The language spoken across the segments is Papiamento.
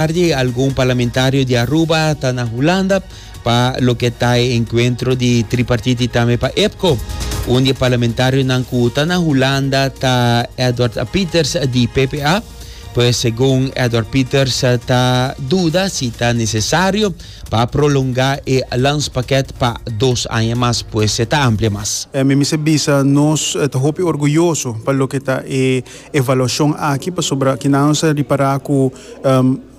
Tardi algun parlamentario di Aruba ta na Hulanda pa loke ta e encuentro di tripartite y tambe pa EPCO. Un di e parlamentarionan cu ta na Hulanda ta Edward Pieters di PPA. Pues segun Edward Pieters ta duda si ta necesario pa prolonga e landspakket pa dos aña mas pues e ta amplia mas. Mi mester bisa nos ta hopi orguyoso pa loke ta e evaluashon aki pasobra kina nos a ripará ku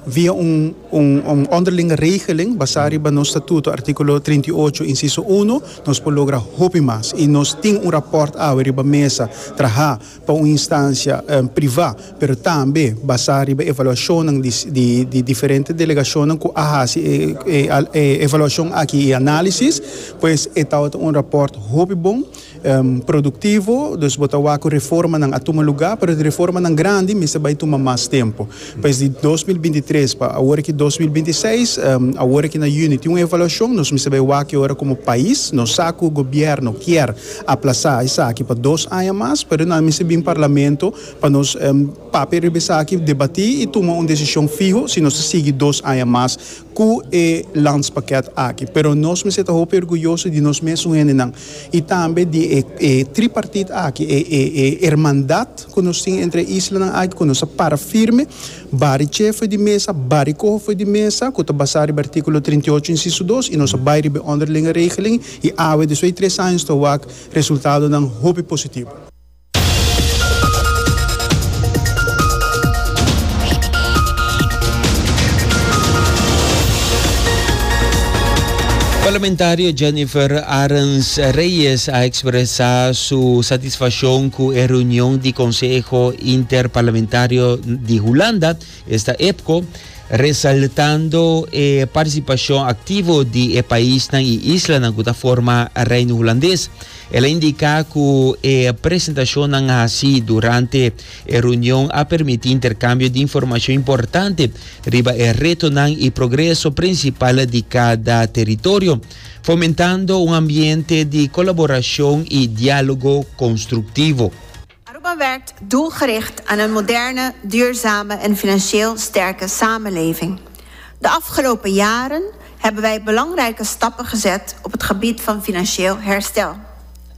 via un un un ònderlinge regeling basá riba nos statuto artíkulo trinta i ocho insiso uno nos por logra hopi mas i nos tin un rapòrt awe riba mesa trahá pa un instansia privá pero tambe basá riba evaluashonnan di di di diferente delegashonnan ku a hasi e e e evaluashon aki i análisis pues e tabata un rapòrt hopi bon. Productivo, dus bo ta wak cu reformanan a tuma lugar, pero di reformanan grandi mester bay tuma mas tempo. Pues di dos mil binti tres pa awor aki dos mil binti seis, awor aki na Juni tin un evaluacion, nos mester bay wak ki ora como pais, nos sa cu gobierno kier aplaza esaki pa dos aña mas, pero nan mester bin Parlamento pa nos papia riba esaki, debati y tuma un decision fiho si nos ta sigui dos aña mas. cu e landspakket aki, pero nos mester ta hopi orguyoso di nos mes un hendenan y tambe di e e tripartite aki, e e e hermandad cu nos tin entre e islanan aki cu nos ta para firme, bari che fo'i di mesa, bari coho fo'i di mesa, cu ta basa riba articulo trinta i ocho inciso dos y nos a bay riba e onderlinge regeling y awe despues di tres años ta wak resultadonan hopi positivo. Parlamentario Jennifer Arends Reyes a expresa su satisfaccion cu e reunion di Conseho Interparlamentario di Hulanda, esta EPCO, resaltando e participacion activo di e paisnan y islanan cu ta forma Reino Hulandes. El a indica cu e presentacionnan haci durante e reunion a permiti intercambio di informacion importante riba e retonan y progreso principal di cada teritorio, fomentando un ambiente di colaboracion y dialogo constructivo. Aruba wèrkt doelgericht aan een moderne, duurzame en financieel sterke samenleving. De afgelopen jaren hebben wij belangrijke stappen gezet op het gebied van financieel herstel,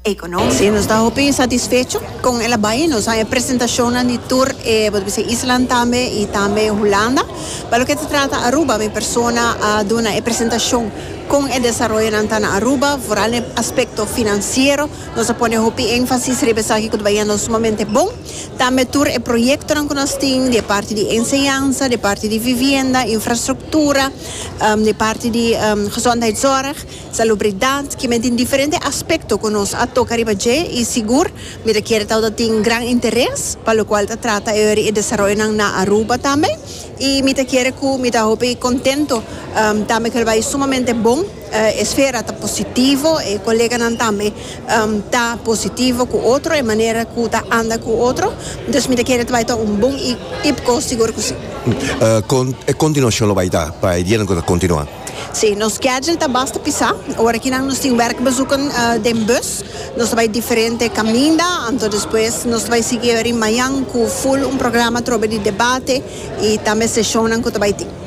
economisch. Si nos ta hopi satisfecho con e labai nos han e presentacionnan di tur e bo ta bisa islan tambe y tambe Hulanda. Pa loke ta trata Aruba mi persona a duna e presentacion con e desaroyonan ta na Aruba, vooral na e aspecto financiero. Nos a pone hopi énfasis riba esaki ku ta bayendo sumamente bon. Tambe tur e proyektonan ku nos tin di e parti di enseñansa, di e parti di vivienda, infrastruktura, di e parti di gezondheidszorg, salubridat, kimen tin diferente aspekto ku nos a toka riba dje i sigur mi ta kere tabata tin gran interes pa lokual ta trata e e desaroyonan na Aruba tambe i mi ta kere ku mi ta hopi kontento tambe ku el bai sumamente bon. E sfera ta positivo, e koleganan tambe ta positivo ku otro, e manera ku ta anda ku otro, entonces mi ta kere ta bai ta un bon i tipko, sigur ku si. Kon e kontinuashon lo bai ta pa e dianan ku ta kontinua? Si, nos skedjul ta basta pisá. Ora kinan nos tin wèrkbezoeken den bus, nos ta bai diferente kaminda, anto despues nos ta bai sigui ori mañan ku ful un programa trobe di debate i tambe seshonnan ku ta bai tin.